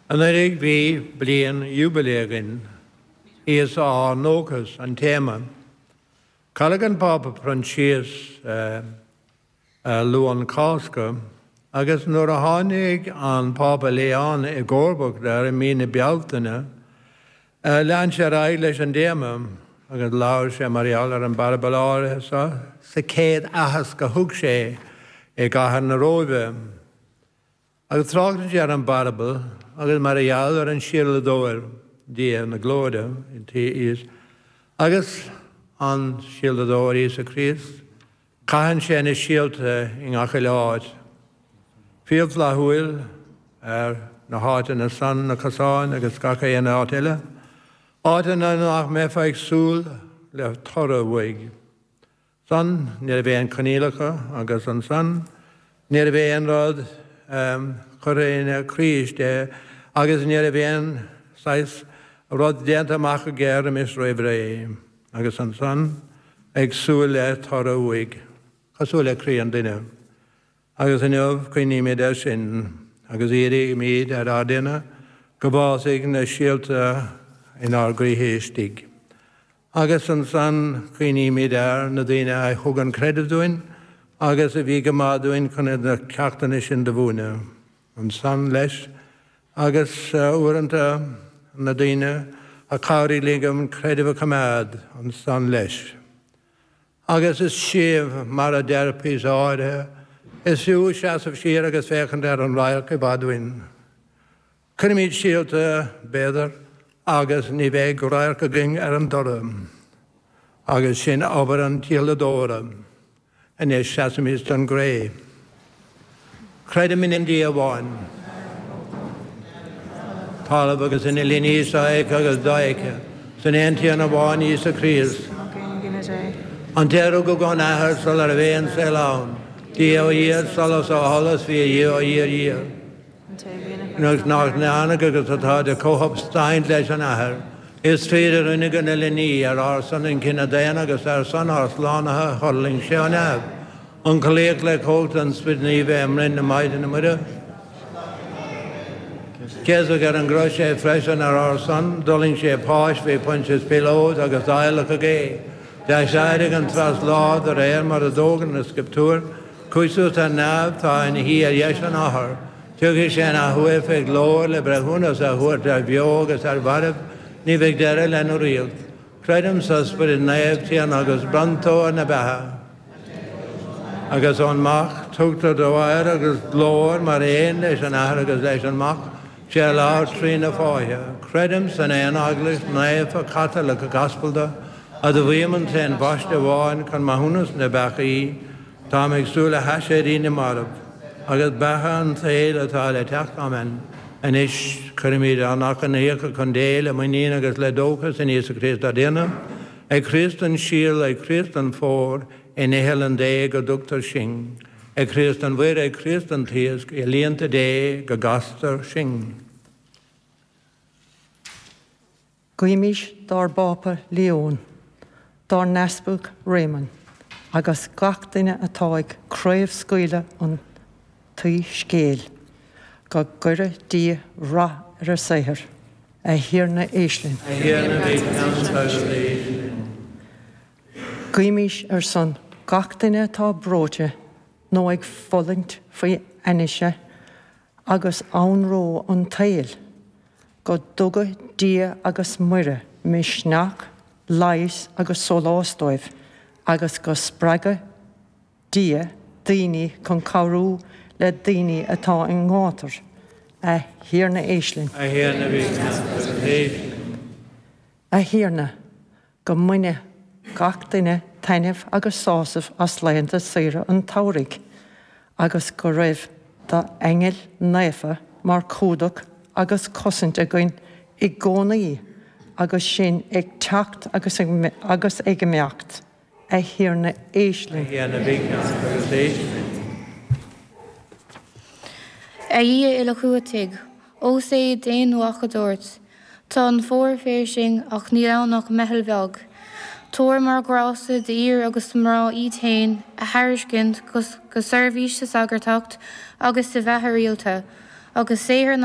Anuraidh bhí bliain jubilee againn. Íosa ár ndóchas an téama. Cailleadh an Pápa Proinsias ar Luan Cásca agus nuair a tháinig an Pápa Leon i gcomharbacht air i mí na Bealtaine lean sé ar aghaidh leis an dtéama agus labhair sé mar gheall ar an bparabal áirithe seo sa chéad aitheasc a thug sé i gcathair na Róimhe. Ag trácht dó ar an bparabal agus mar a gheall ar an síoladóir, Dia na glóire, agus an síoladóir, Íosa Críost, caitheann sé na síolta i ngach uile áit, fial flaithiúil ar na háiteanna san, na cosáin agus gach aon áit eile, áiteanna nach mbeifeá ag súil le toradh uaidh. san, ní raibh aon choinníollacha agus ansan, ní raibh aon rud curtha ina craois de agus ní raibh aon saghas rud déanta amach aige roimis roimh ré. Agus ansan ag súil le toradh uaidh. Cosúil le croí an duine. Agus inniu cuimhnímid ar sin agus iarraimid ar ár dTiarna go bhfásfaidh na síolta inár gcroíthe istigh. agus ansan cuimhnímid ar na daoine a thug an creideamh dúinn agus a bhí go maith dúinn chun iad na ceachtanna sin do mhúineadh. Ansan, leis, agus uaireanta na daoine a chabhraigh linn an creideamh a choimeád, ansan, leis. Agus is fiú, mar a deir píosa áirithe, is fiú seasamh siar agus féachaint ar an radharc i bhfad uainn. Cuirfimid síolta, b'fhéidir, agus ní bheidh radharc againn ar an dtoradh. Agus sin obair an tsíoladóra. Anois seasaimis don gcré. Creidim in aon Dia amháin. talamh agus an uile ní sofheicthe agus dofheicthe, is in aon Tiarna amháin, Íosa Críost, an té a rugadh ón Athair sula raibh aon saol ann, Dia ó Dhia, solas ó sholas, fíorDhia ó fhíorDhia. Nuair nach ndearnadh agus atá de chomhshubstaint leis an athair, is tríd a rinneadh an uile ní ar ár son an cine daonna agus ar son ár slánaithe thuirling sé ó neamh, ionchollaíodh le cumhacht an Sprid Naoimh é i mbroinn na Maighdine Muire. Céasadh ar an gcrois é freisin ar ár son, d'fhulaing sé páis, faoi Phointias Píoláit agus adhlacadh é, d'aiséirigh an treas lá de réir mar a d'fhógair na Scrioptúir, Chuaigh suas ar neamh tá ina shuí ar dheis an Athar. Tiocfaidh sé an athuair faoi ghlóir le breithiúnas a thabhairt ar bheo agus ar mhairbh. Ní bheidh deireadh lena ríocht. Creidim sa Spiorad Naomh, Tiarna agus bronntóir na beatha. Agus ón Mac tugtar dó adhradh agus glóir mar aon leis an Athair agus leis an Mac. Is é a labhair trí na fáithe, Creidim san aon Eaglais naofa Caitliceach Aspalda, admhaím an t-aon Bhaisteadh amháin chun maithiúnas na bpeacaí, táim ag súil le haiséirí na marbh, agus beatha an tsaoil atá le teacht. Amen. Anois, cuirimid ár n-achainíocha chun Dé, le muinín agus le dóchas in Íosa Críost ár dTiarna. Ag Críost an síol, ag Críost an fómhar, in iothlainn Dé go dtugtar sinn. Ag Críost an mhuir, ag Críost an t-iasc, i líonta Dé go gcastar sinn. Guímis dár bPápa Leon, dár nEaspag Réamonn agus gach duine atá ag craobhscaoileadh an tSoiscéil, go gcuire Dia rath ar a saothar. A Thiarna, éist linn. A Thiarna, bí ceansa agus éist linn. Guímis ar son gach duine atá breoite nó ag fulaingt faoi ainnise agus anró an tsaoil. Go dtuga Dia agus Muire misneach, leigheas agus sólás dóibh agus go spreaga Dia daoine chun cabhrú le daoine atá i ngátar. A Thiarna éist linn. A Thiarna, bí linn. A Thiarna, go mbaine gach duine taitneamh agus sásamh as laethanta saoire an tsamhraidh agus go raibh d'aingil naofa mar chumhdach agus cosaint againn i gcónaí agus sinn ag teacht agus ag imeacht, A Thiarna éist linn. A Thiarna bí ceansa agus éist linn. A Dhia uilechumhachtaigh, Ós é d'Aonmhac a dúirt, Tá an fómhar fairsing ach níl ann ach meitheal bheag. Tabhair mar ghrásta d'fhir agus do mhná iad féin a thairiscint go seirbhís sa sagartacht agus sa bheatha rialta, agus saothar na.